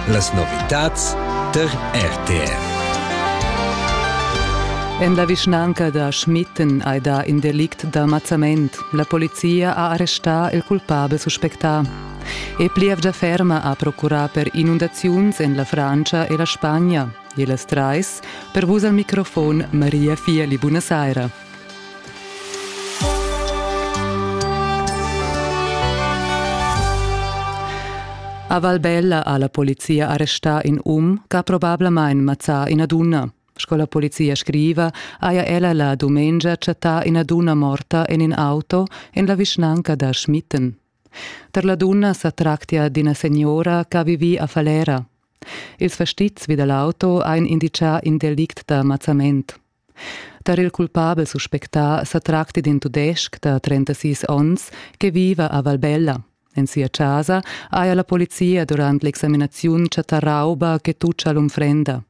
Las novitads tar RTR. En la vischnanca da Schmitten hai dà in delict d'almazzament. La polizia ha arrestà il culpabel suspectà. E plievgia ferma ha procurà per inundaziuns en la Francia e la Spagna. E las trais, per vus al microfon Maria Fieli, buonasera. A Valbella ha la polizia arrestà in um ch'ha probablamain mazzà ina dunna. Sco la polizia scriva, haja ella la dumengia chattà ina dunna morta en in auto en la vischnanca da Schmitten. Tar la dunna sa tractia d'ina signora che ha vivì a Falera. Ils fastizs vi da l'auto han indicà in delict da mazzament. Tar il culpabel suspectà sa tracti d'in tudestg da 36 onns che viva a Valbella. En sia chasa haja la polizia durant l'examinaziun chattà rauba che tutscha l'unfrenda.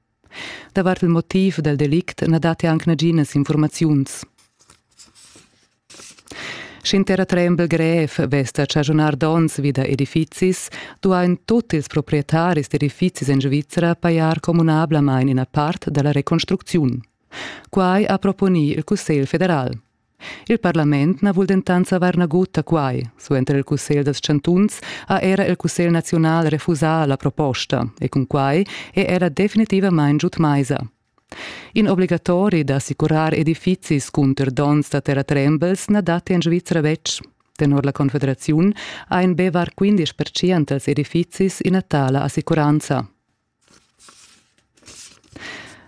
Davart il motiv dal delict na datti anc naginas informaziuns. Sch'intera trembel grev vess da chaschunar donns vi da edifizis, duain tut ils proprietaris d'edifizis en Svizra pajar communablamain ina part da la reconstrucziun. Quai ha proponì il Cussegl federal. Il parlament na vul dentant savair nagut da quai. Suenter il Cussegl dals chantuns ha era il Cussegl naziunal refusà la proposta e cun quai è era definitivamain giud maisa. In obligatori da assicurar edifizis cunter donns da terratrembels na dat en Svizra betg. Tenor la Confederaziun ein be var 15 pertschient dels edifizis ina tala assicuranza.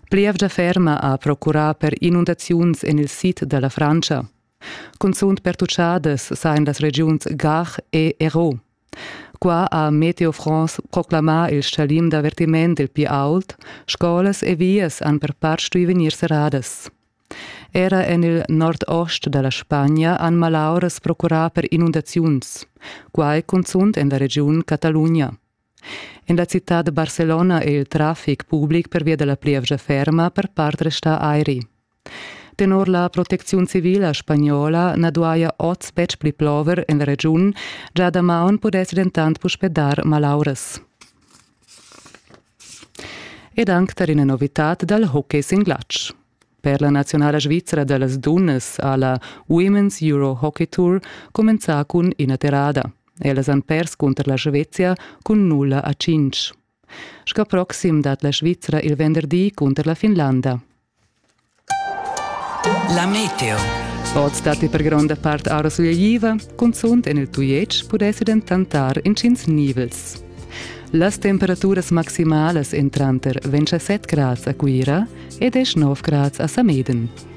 Plievgia ferma ha procurà per inundaziuns en il sid da la Frantscha. Cunzunt pertuchadas sain las regiuns Gard e Hérault. Qua ha Meteo France proclamà il stgalim d'avertiment il pli ault, scolas e vias han per part stuì vegnir serradas. Era en il nordost da la Spagna han malauras procurà per inundaziuns, quai cunzunt en la regiun Catalugna. En la citad da Barcelona è il traffic public pervia da la plievgia ferma per part restà airi. Tenor la protecziun civila spagnola na duaja oz betg pli plover en la regiun, già damaun pudess dentant puspè dar malauras. Ed anc tar ina novitad dal hockey sin glatsch. Per la nazionala svizra da las dunnas ha la Women's Euro Hockey Tour cumenzà cun ina terrada. Ellas han pers cunter la Svezia cun nulla a cinc. Sco proxim dat la Svizra il venderdi cunter la Finlanda. La meteo. Oz datti per gronda part aura sulegliva, cunzunt en il Tujetsch pudessi dentant dar intgins nivels. Las temperaturas maximalas èn tranter 27 grads a Cuira ed 9 grads a Sameden.